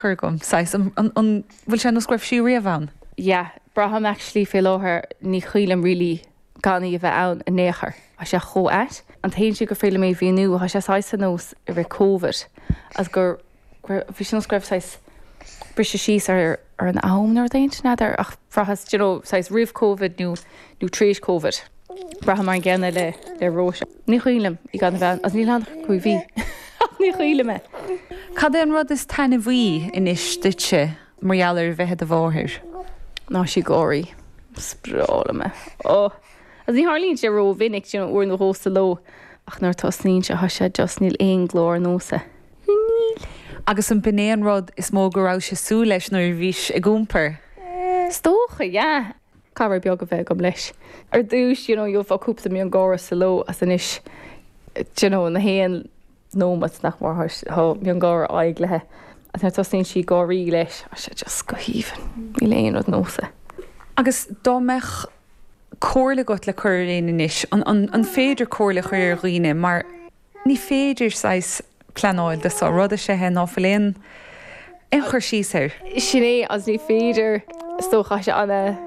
cur agam, saghas, an, an, an bhfuil sé nós go raibh sí riamh ann. yeah, braithim actually fé láthair ní chuimhin liom really gan í a bheith ann in ao' chor, tá sé chomh ait. An t-aon tslí gur féidir liom é a mhíniú, tá sé saghas ar nós i rith Covid agus gur, gur, bhí sé nós go raibh saghas briseadh síos ar, ar an am nó rud éigin n'fheadar ach bhraitheas d'you know saghas roimh Covid nó, nó tar éis Covid, braithim mar an gcéanna le, le Róise. Ní chuimhin liom í gan a bheith ann agus níl ann ach cúig mhí ach ní chuimhin liom é. Cad é an rud is taitneamhaí anois duitse mar gheall ar a bheith i do mháthair? Ná sí ag gáirí. Is breá liom é. Ó! Agus ní tharlaíonn sé ró-mhinic, you know, uair nó dhó sa ló, ach nuair a tosnaíonn sé, tá sé just, níl aon glór nós é. Níl. Agus an b'in é an rud is mó go rabhais ag súil leis nuair a bhís ag iompar? Is dócha, yeah. cabhair beag a bheith agam leis. Ar dtús you know gheofá cúpla miongháire sa ló agus anois d'you know nach aon nóimeat nach mór tá miongháire á fháil uaithi agus nuair a tosnaíonn sí ag gáirí leis tá sé just go haoibhinn. Níl aon rud nós é. Agus dá mbeadh comhairle agat le cur ar éinne anois, an féidir comhairle a chur ar dhaoine mar. Ní féidir saghas pleanáil dó, sé an rud is ea ná fuil aon aon chur síos air. Sin é, agus ní féidir, is dócha, tá sé ana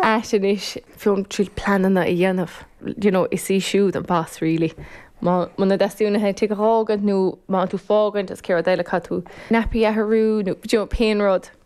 ait anois féin triail pleananna a dhéanamh, you know, is í siúd an boss really. Muna dteastaíonn uaithi an tigh a dh'fhágaint nó má tá tú ag fágaint is an chéad rud eile caithfidh tú nappy a athrú nó, you know, pén rud.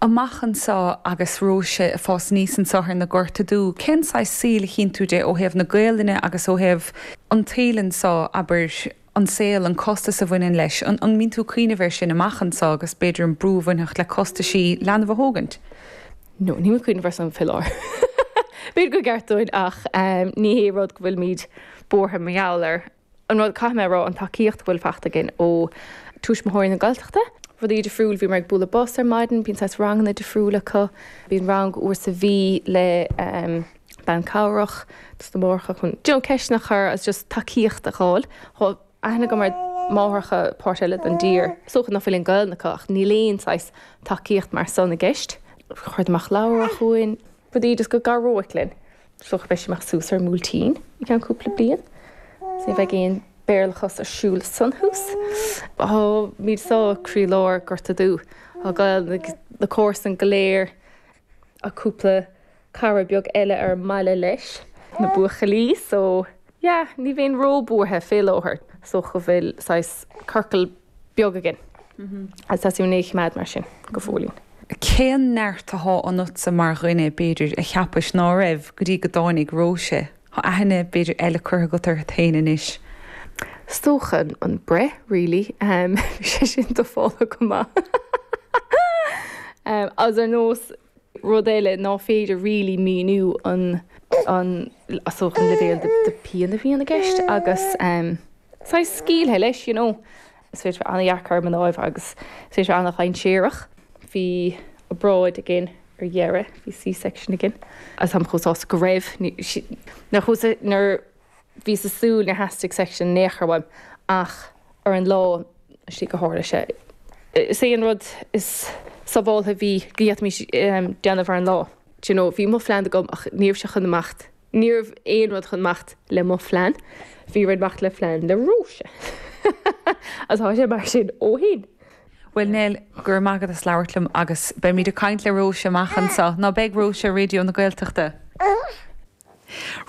amach anso agus Róise ag fás aníos anso ar na Gorta Dubha, cén saghas saoil a chíonn tú di ó thaobh na Gaolainne agus ó thaobh an tsaoil anso, abair, an saol, an costas a bhaineann leis, an mbíonn tú ag cuimhneamh air sin amach anso agus b'fhéidir an brú a bhainfeadh le costaisí leanbh a thógaint? No, nílim ag cuimhneamh ar san, fé láthair. B'fhéidir gur gceart dúinn ach ní hé rud go bhfuilimíd buartha mar gheall air. An rud caithfidh mé a rá an tacaíocht go bhfuil fachta againn ó Tuismitheoirí na Gaeltachta. Rudaí difriúil, bhíomar ag bualadh bos ar maidin, bíonn saghas ranganna difriúil acu, bíonn rang uair sa mhí le ehm bean cabhrach dos na máithreacha chun d'you know ceisteanna a chur agus just tacaíocht a dh'fháil. Tá aithne agam ar máithreacha páirt eile don dtír, is dócha nach bhfuil aon Gaolainn acu ach níl aon saghas tacaíocht mar san i gceist. Chuireadar amach leabhra chugainn. rudaí just go gcabhródh linn is dócha go mbeidh sí amach suas ar an mBuailtín i gceann cúpla bliain so ní bheidh aon béarlachas ar siúl ansan thuas táimid sa croílár Gorta Dubha agus na comharsain go léir ach cúpla cara beag eile ar an mbaile leis na buachaillí so yeah ní bheinn ró-buartha fé láthair so go bhfuil saghas circle beag againn agus tá sí réidh choimeád mar sin go fóillín. Cén neart athá ionatsa mar dhuine, b'fhéidir, a cheapais ná raibh go dtí go dtáinig Róise. Thá aithne, b'fhéidir, eile curtha agat orthat fhéin anois. 'S dócha an breith really. Bhí sé sin dúshlánach go maith. Agus ar nós Rud eile ná féidir really míniú an an leibhéal de pian a bhíonn i gceist agus saghas scaoilthe leis you know. Is féidir a bheith an-dheacair ar mhnáibh agus is féidir a bheith an-dhainséarach. Bhí obráid againn ar dheireadh, bhí C-section againn agus táim chomh sásta go raibh, nuair, nuair, Bhíos ag súil nár theastaigh section in aon chor uaim ach ar an lá sásta gur tharla sé. Is é an rud is sábháltha bhí go d'fhéadfaimís déanamh ar an lá. Do you know, bhí mo phlean agam ach ní raibh sé chun imeacht, ní raibh aon rud chun imeacht le mo phlean. Bhí rud imeacht le phlean Róise agus tá sé mar sin ó shin. Bhuel Nell, go raibh maith agat as labhairt liom agus beimid ag caint le Róise amach anseo, nó beidh Róise ar Raidio na Gaeltachta.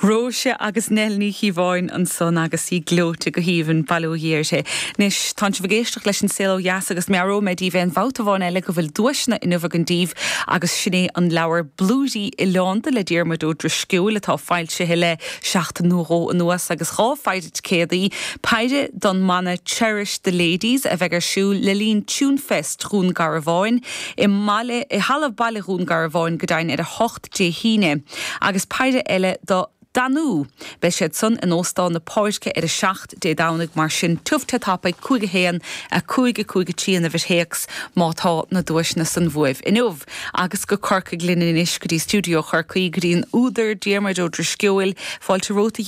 Róise agus Nell Ní Chíobháin ansan agus í gleoite go haoibhinn, bail ó Dhia uirthi. Anois, tánn sibh ag éisteacht leis An Saol Ó Dheas agus meabhróidh mé daoibh aon bhabhta amháin eile go bhfuil duaiseanna inniu againn daoibh agus sin é an leabhar Blúirí oileánda le Diarmuid Ó Drisceoil atá foilsithe le seachtain nó dhó anuas agus dhá pheidhre ticéadaí, peidhre don mbanna Cherish the Ladies a bheidh ar siúl le linn Tunefest Dhún Garbháin i mbaile i halla Baile Dhún Garbháin go deimhin ar a hocht Dé hAoine, agus peidhre eile do Danú. Beidh siad san in Óstán na Páirce ar a 7 Dé Domhnaigh mar sin tiubh te tapa a cúig a haon, a cúig, a cúig a trí an uimhir théacs má tá na duaiseanna san bhuaibh inniu. Agus go Corcaigh linn anois go dtí stiúideo Chorcaí go dtí an údar Diarmuid Ó Drisceoil. Fáilte romhat a Dhia.